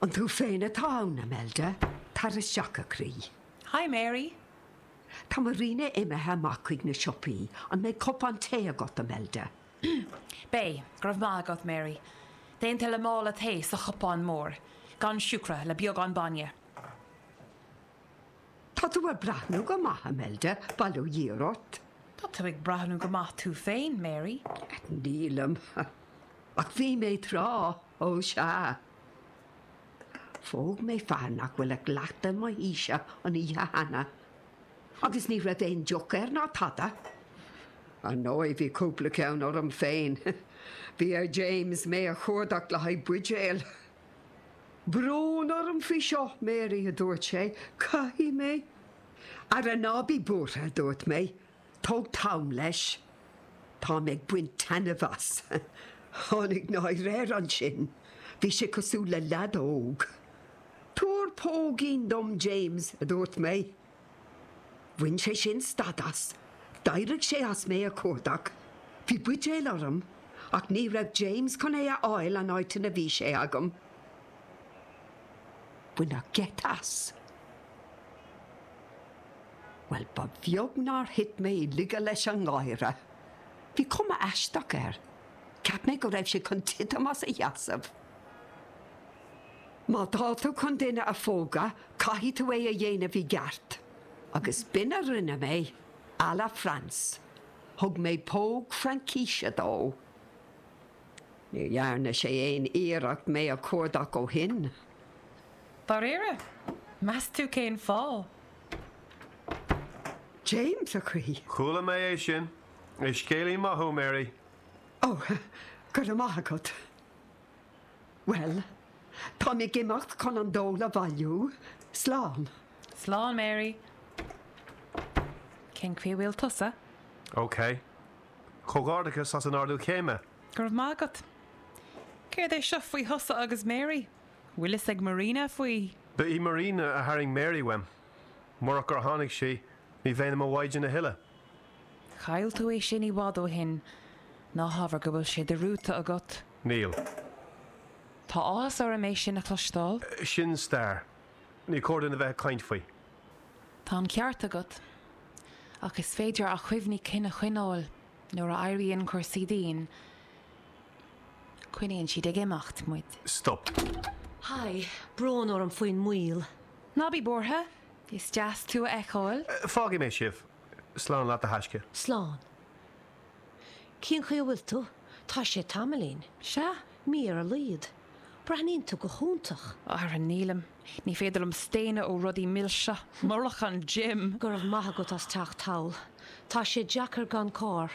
An tú féin atá ann, Imelda? Tar isteach, a chroí. Hi, Mary. Tá Marina imithe amach chuig na siopaí. An mbeidh cupán tae agat, Imelda? Beidh, go raibh maith agat, Mary. Déanta le mála tae sa chupán mór, gan siúcra, le beagán bainne. Tá tú ag breathnú go maith, Imelda, bail ó Dhia ort. Tá tú ag breathnú go maith tú féin, Mary. Nílim, ach bhí mé tráth, ó sea. Phóg mé fear nach bhfuil ach leath mo aoise an oíche cheana, agus ní raibh aon deoch air ná tada. Ar ndóigh, bhí cúpla ceann orm féin. Bhí ar James mé a chuardach le haghaidh buidéal. Tá brón orm faoi seo, Mary, a dúirt sé, caithfidh mé. Ara ná bí buartha, a dúirt mé, tóg t'am leis. Tá mé ag baint taitneamh as. Tháinig náire air ansin. Bhí sé cosúil le lead óg. Tabhair póigín dom, James, a dúirt mé. Bhain sé sin stad as, d'éirigh sé as mé a chuardach, bhí buidéal orm ach ní raibh James chun é a fháil an áit ina raibh sé agam. Baineadh geit as. Bhuel, ba bheag nár thit mé i laige leis an ngáire. Bhí cuma aisteach air, cheap mé go raibh sé chun titim as a sheasamh. Má tá tú chun duine a phógadh, caithfidh tú é a dhéanamh i gceart. Agus b'in a rinne mé, à la France. Thug mé póg Fraincíse dó. Ní dhearna sé aon iarracht mé a chuardach ó shin. Dáiríre? Meas tú cén fáth? James, a chroí. Chuala mé é sin. Is scéalaí maith thú, Mary. Ó, go raibh maith agat. Bhuel, táim ag imeacht chun an dól a bhailiú. Slán. Slán, Mary. Cén chaoi a bhfuil tusa? OK. Comhghairdeachas as an ardú céime! Go raibh maith agat. Céard é seo faoi thusa agus Mary? Bhfuil fhios ag Marina faoi? Ba í Marina a tharraing Mary uaim. Murach gur tháinig sí, ní bheinn i mo mhaighdean a thuilleadh. Chaill tú é sin i bhfad ó shin. Ná habair go bhfuil sé dearmadta agat. Níl. Tá áthas orm é sin a chloisteáil. Sin stair. Ní cóir dúinn a bheith ag caint faoi. Tá an ceart agat. Ach is féidir cuimhní cinn a choinneáil nuair a éiríonn cúrsaí dian. Coinníonn siad ag imeacht muid. Stop. Haigh, brón orm faoin moill. Ná bí buartha. Is deas tú a fheiceáil. Fágfaidh mé sibh. Slán leat a thaisce. Slán. Cén chaoi a bhfuil tú? Tá sé tamaillín. Sea, mí ar a laghad. Breathnaíonn tú go hiontach. Ara nílim. Ní féidir liom staonadh ó rudaí milse. Murach an gym! Go raibh maith agat as teacht thall. Tá sé deacair gan carr.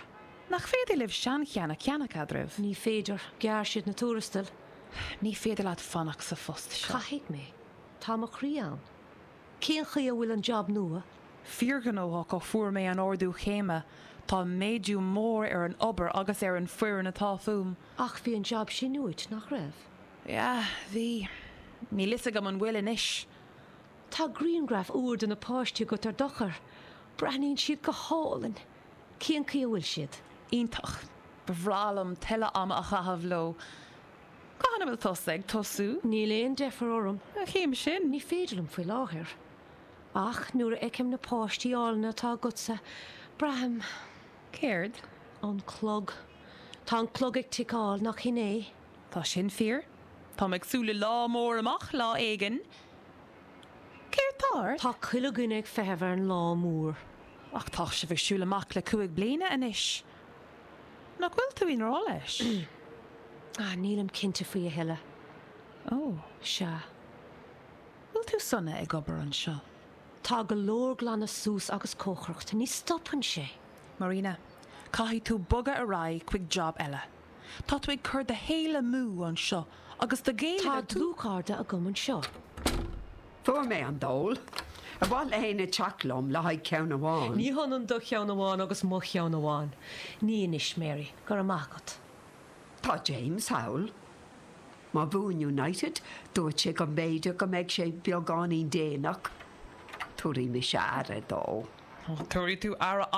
Nach féidir libh seancheann a cheannach eadraibh? Ní féidir. Ghearr siad na tuarastail. Ní féidir leat fanacht sa phost seo. Caithfidh mé. Tá mo chroí ann. Cén chaoi a bhfuil an jab nua? Fíorghnóthach ó fuair mé an t-ardú céime. Tá méadú mór ar an obair agus ar an foireann atá fúm. Ach bhí an jab sin uait, nach raibh? Yeah, bhí. Níl fhios agam an bhfuil anois. Tá grianghraf úr de na páistí agat ar d'eochair. Breathnaíonn siad go hálainn. Cén chaoi a bhfuil siad? Iontach. Ba bhreá liom tuilleadh ama a chaitheamh leo. Cathain a bhfuil tusa ag tosú? Níl aon deifir orm. Cén chaoi sin? Ní féidir liom faoi láthair. Ach nuair a fheicim na páistí áille atá agatsa, braithim. Céard? An clog. Tá an clog ag ticeáil, nach shin é? Tá sin fíor. Táim ag súil le lá mór amach lá éigin. Céard tá ort? Tá chuile dhuine ag feitheamh ar an lá mór. Ach tá sibh ag siúl amach le cúig bliana anois. Nach bhfuil tú i ngrá leis? Ach nílim cinnte faoi a thuilleadh. Ó, sea. Bhfuil tú sona ag obair anseo? Tá go leor glanadh suas agus cócaireacht. Ní stopann sé. Marina, caithfidh tú bogadh ar aghaidh chuig job eile. Tá tú ag cur do shaoil amú anseo agus do chéile. Tá dlúthchairde agam anseo. Fuair mé an dól. Ar mhaith le héinne teacht liom le haghaidh ceann amháin? Ní hionann do cheann amháin agus mo cheann amháin. Ní anois, Mary. Go raibh maith agat. Tá James thall. Má bhuann United, dúirt sé go mb'fhéidir go mbeidh sé beagáinín déanach. Tabharfaidh mise aire dó. Tú